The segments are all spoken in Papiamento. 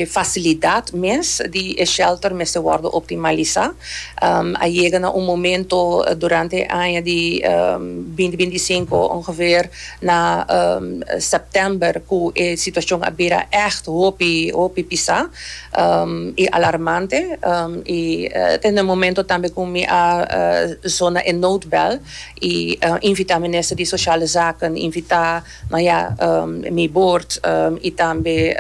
E facilidad mes di e shelter mester wordo optimalisa. A yega na un momento durante e aña di binti binti i sinku, ongeveer na september, cu e situacion a bira echt hopi hopi pisa i alarmante. I ta na e momento tambe cu mi a sona e noodbel i invita Minister di Sociale Zaken, invita. Maya, mi boord i tambe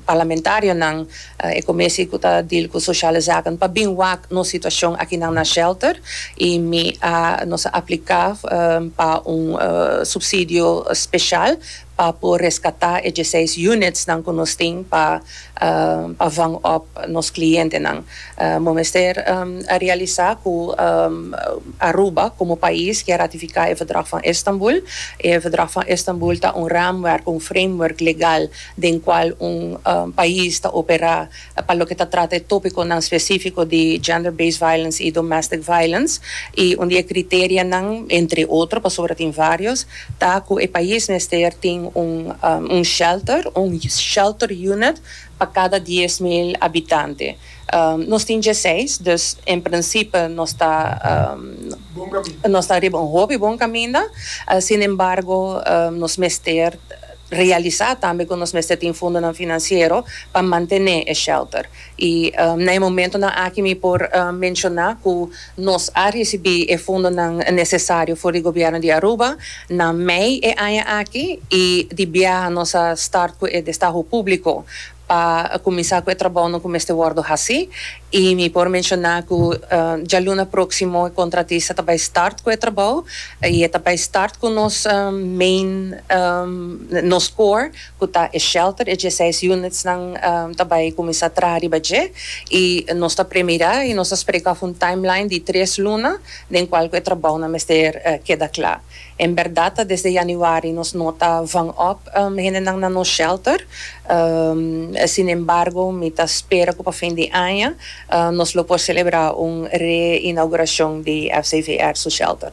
parlamentarionan e comisie cu ta deal cu sociale zaken pa bin wak nos situacion akinan na shelter i mi a nos a aplica pa un subsidio special pa por rescata e dieseis unitsnan cu nos tin pa vang op nos clientenan. Bo mester a realisa cu Aruba, como pais ki a ratifica e Verdrag van Istanbul, e Verdrag van Istanbul ta un raamwerk, un framework legal den cual un pais ta opera pa loke ta trata e topiconan specifico di gender-based violence y domestic violence. Y un di e criterianan, entre otro, pasobra tin varios, ta cu e pais mester tin un shelter, un shelter unit, pa cada dies mil habitante. Nos tin dje seis, dus en principe nos ta nos ta riba un hopi bon caminda, sin embargo nos mester realisa tambe cu nos mester tin fundonan financiero pa mantene e shelter. Y na e momentonan aki mi por menciona cu Nos a ricibi e fondonan necesario for di Gobierno di Aruba na mei e aña aki y di biaha nos a start cu e destaho publico pa cuminsa cu e trabaonan cu mester wordo haci y mi por menciona cu djaluna proximo e contratista ta bay start cu e trabao y e ta bay start cu nos main nos core ku ta e shelter e dieseis unitsnan ta bai kuminsá traha riba dje i nos ta premirá i nos ta spreka òf un timeline di tres luna den kual ku e trabounan mester keda kla. En bèrdat ta desde yanüari nos no ta vanòp hendenan na nos shelter, sinembargo mi ta spera ku pa fin di aña nos lo por selebrá un re-inaugurashon di FCVR su shelter.